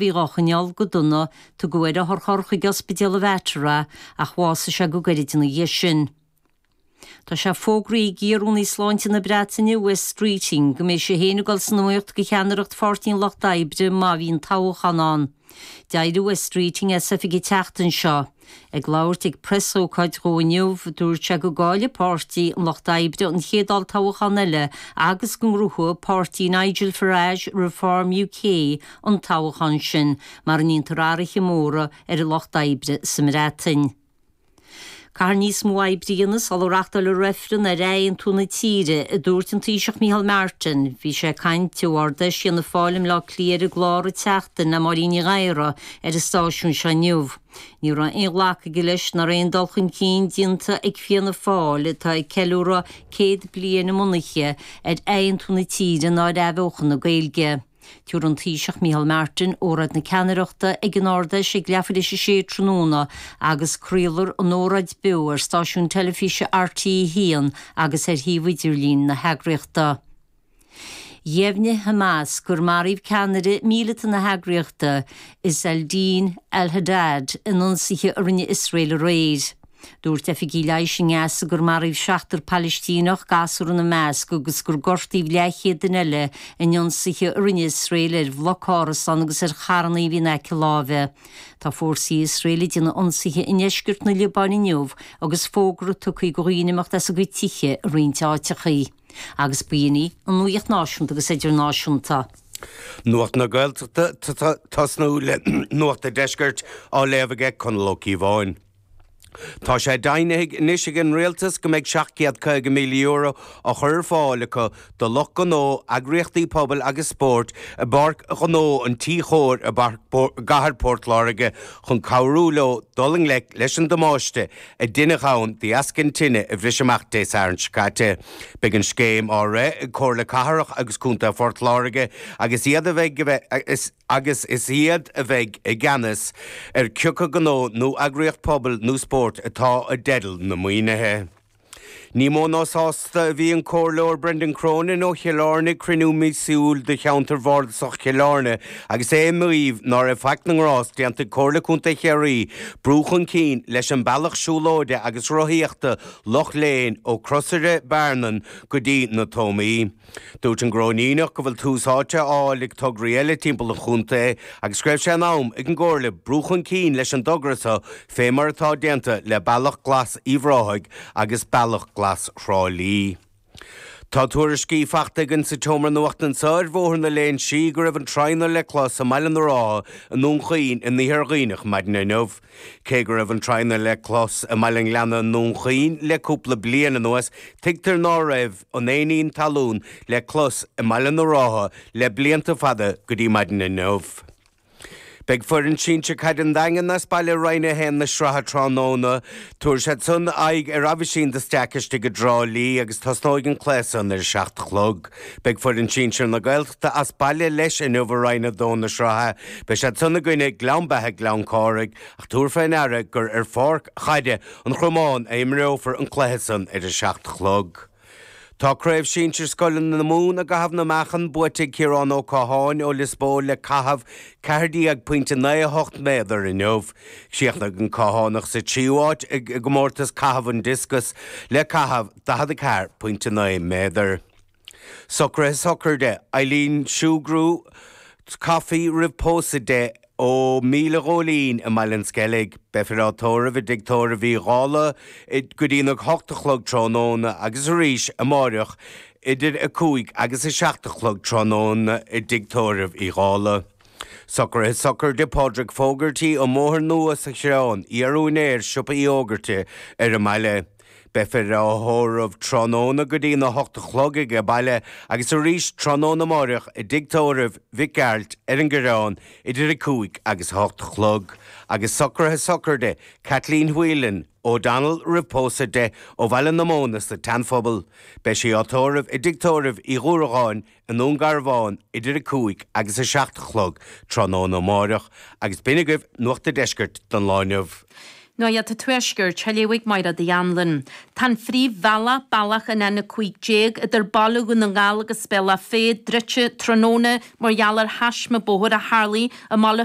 Bhí dhá choinneáil go dona, tugadh ar otharcharr chuig Ospidéal an Mhater ach bhásaigh sé go gairid ina dhiaidh sin. Tá sé fógraithe ag iar-Rúnaí Sláinte na Breataine, Wes Streeting, go mbeidh sé féin ag dul san iomaíocht do cheannaireacht Pháirtí an Lucht Oibre má bhíonn toghchán ann. D'éirigh Wes Streeting as oifig an tseachtain seo. Ag labhairt ag preasócáid dhó inniu, dúirt sé go gcaillfidh Páirtí an Lucht Oibre an chéad olltoghachán eile agus go ngnóthóidh páirtí Nigel Farage, Reform UK, an toghachán sin, mara ndéantar athruithe móra ar an Lucht Oibre sa mBreatain. Caithfear níos mó oibre a dhéanamh sula reachtálfar reifreann ar athaontú na tíre, a dúirt an Taoiseach Micheál Martin. Bhí sé ag caint ó Ard Fheis Fhianna Fáil i mBleá Cliath ar an gclár An tSeachtain le Máirín Ní Ghadhra ar an stáisiún seo inniu. Ní raibh aon ghlacadh aige leis nach raibh aon dul chun cinn déanta ag Fianna Fáil, atá ag ceiliúradh 100 bliain a mbunaithe, ar athaontú na tíre ná ar athbheochan na Gaeilge. Tabharfaidh an Taoiseach Micheál Martin óráid na ceannaireachta ag an Ard-Fheis ag leath tar éis a sé tráthnóna agus craolfar an óráid beo ar stáisiún teilifíse RTÉ 1 agus ar shuíomh idirlín na heagraíochta. Dheimhnigh Hamas gur maraíodh ceannaire míleata na heagraíochta, Izz al-Din al-Haddad, in ionsaithe a rinne Iosrael aréir. Dúirt oifigigh leighis i nGaza gur maraíodh seachtar Palaistíneach, gasúr ina measc, agus gur gortaíodh leathchéad duine eile in ionsaithe a rinne Iosrael ar bhloc árasán agus ar charranna a bhí in aice láimhe. Tá fórsaí Iosrael ag déanamh ionsaithe i ndeisceart na Liobáine inniu agus fógra tugtha acu do dhaoine imeacht as a gcuid tithe i roinnt áiteacha. Agus ba shin í an nuacht náisiúnta agus idirnáisiúnta. Nuacht na Gaeltachta ag tosnú le Nuacht an Deiscirt á léamh aige Conall Ó Cíobháin. Tá sé deimhnithe anois ag an Rialtas go mbeidh €750,000 á chur ar fáil acu do lucht gnó, eagraíochtaí pobail agus spóirt i bPáirc Ghnó an Tí Chóir i gCathair Port Láirge chun cabhrú leo dul i ngleic leis an damáiste a deineadh ann de dheasca an tine a bhris amach Dé Sathairn seo caite. Beidh an scéim á rith ag Comhairle Cathrach agus Contae Phort Láirge agus is iad a bheidh i gceannas ar cé acu gnó nó eagraíocht pobail nó spóirt atá i dteideal na maoinithe. Ní mó ná sásta a bhí an Comhairleoir Brendan Cronin ó Chill Airne ag cruinniú míosúil de Cheantar Bhardasach Chill Airne agus é ag maíomh ná raibh faic na ngrást déanta ag Comhairle Contae Chiarraí brú chun cinn leis an bealach siúlóide agus rothaíochta Loch Léin ó Crosaire Bearnan go dtí na Tóimí. Dúirt an Cróiníneach go bhfuil tús áite á fháil ag tograí eile timpeall an chontae agus go raibh sé in am ag an gComhairle brú chun cinn leis an dtogra seo fé mar atá déanta le Bealach Glas Uíbh Ráthaigh agus Bealach Glas Thrá Lí. Tá tuairiscí faighte againn sa tseomra nuachta anseo ar Bhóthar na Léinsí go raibh an tradhna le clos i mBaile na Rátha i nDún Chaoin in Iarthar Dhuibhneach maidin inniu. Cé go raibh an tradhna le clos i mBaile an Ghleanna i nDún Chaoin le cúpla bliain anuas, tuigtear ná raibh an éinín talún le clos i mBaile na Rátha le blianta fada go dtí maidin inniu. Beidh foireann sinsear caide an Daingin as baile i Roinn 1 na sraithe tráthnóna. Tabharfaidh siad san aghaidh ar Aibhistín de Staic istigh i dTrá Lí agus tosnóidh an cluiche san ar a seacht a chlog. Beidh foireann sinsir na Gaeltachta as baile leis inniu i Roinn 2 na sraithe. Beidh siad san i gcoinne Gleann Beithe-Gleann Chárthaigh ach tabhair fé ndeara gur ar Pháirc Chaide an Chromáin a imreofar an cluiche san ar a seacht a chlog. Tá Craobh Sinsir Scoileanna na Mumhan i gcaitheamh na meáchan buaite ag Ciarán Ó Catháin ó Lios Póil le caitheamh ceathair déag pointe naoi a hocht méadar inniu. Chríochnaigh an Cathánach sa tríú háit i gcomórtas caitheamh an discus le caitheamh. 44.9 méadar. Socruithe sochraide, Eileen Sugrue, Coffey roimh pósadh di ó Míle Góilín i mBaile an Sceilg. Beifear á tórramh i dTigh Tórraimh Uí Dhálaigh go dtí'n a hocht a chlog tráthnóna agus arís amáireach idir a cúig agus a seacht a chlog tráthnóna i dTigh Tórraimh Uí Dhálaigh. Socruithe sochraide, Pádraig Fogarty, ón mBóthar Nua sa Choireán, iar-úinéir Siopa Uí Fhógartaigh ar an mbaile. Beifear á thórramh tráthnóna go dtí'n 8 a chlog aige baile agus arís tráthnóna amáireach i dtigh tórraimh Mhic Gearailt ar an gCoireán idir 5 agus 8 a chlog. Agus socruithe sochraide, Kathleen Whelan, O'Donnell roimh pósadh di, ó Bhaile na Móna sa tSeanphobal. Beidh sí á tórramh i dtigh tórraimh Uí Dhruacháin i nDún Garbhán idir 5 agus 7 a chlog tráthnóna amáireach agus b'in agaibh Nuacht a' Deiscirt don lá inniu. Nuacht a' Tuaiscirt á léamh ag Máire Uí Annluain. Tá an phríomhbhealach, bealach an N15, idir Baile Dhún na nGall agus Bealach Féich druidte tráthnóna mar gheall ar thaisme bóthair a tharlaigh i mBaile